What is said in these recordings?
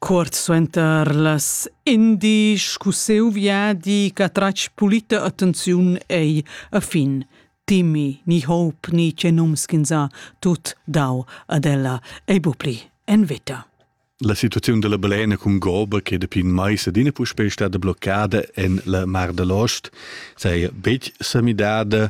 Cuort suenter las indisch cu siu viadi ch'ha tratg pulita attenziun ei a fin Timmy ni Hope ni che nums ch'ins ha tut dau ad ella ei bu pli en veta. La situaziun dalla balena cun goba che dapi in mais adina puspei stada bloccada en la Mar da l'Ost saja betg sa midada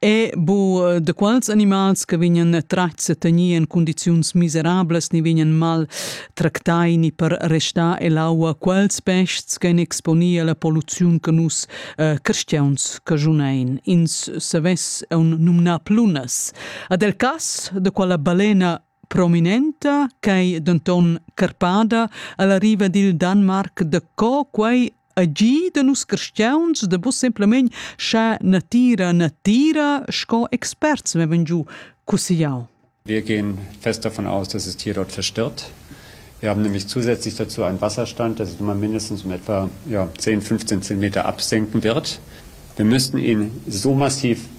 E bu äh, de quals animals che vegnan tratgs e tenir en condiziuns miserablas ni vegnan mal tractai ni per restar ell'aua quels pests che exponia la poluziun che nus äh, cristians che junein. Ins savess un numnar plunas. Ad el cas de quella balena prominenta ch'ei denton carpada alla riva dil Danmark da co quei agì da nus cristiauns da vus semplamein scha natira natira sco experts vevan giu cussigliau. Wir gehen fest davon aus, dass das Tier dort verstört. Wir haben nämlich zusätzlich dazu einen Wasserstand, dass es immer mindestens um etwa ja, 10, 15 Zentimeter absenken wird. Wir müssten ihn so massiv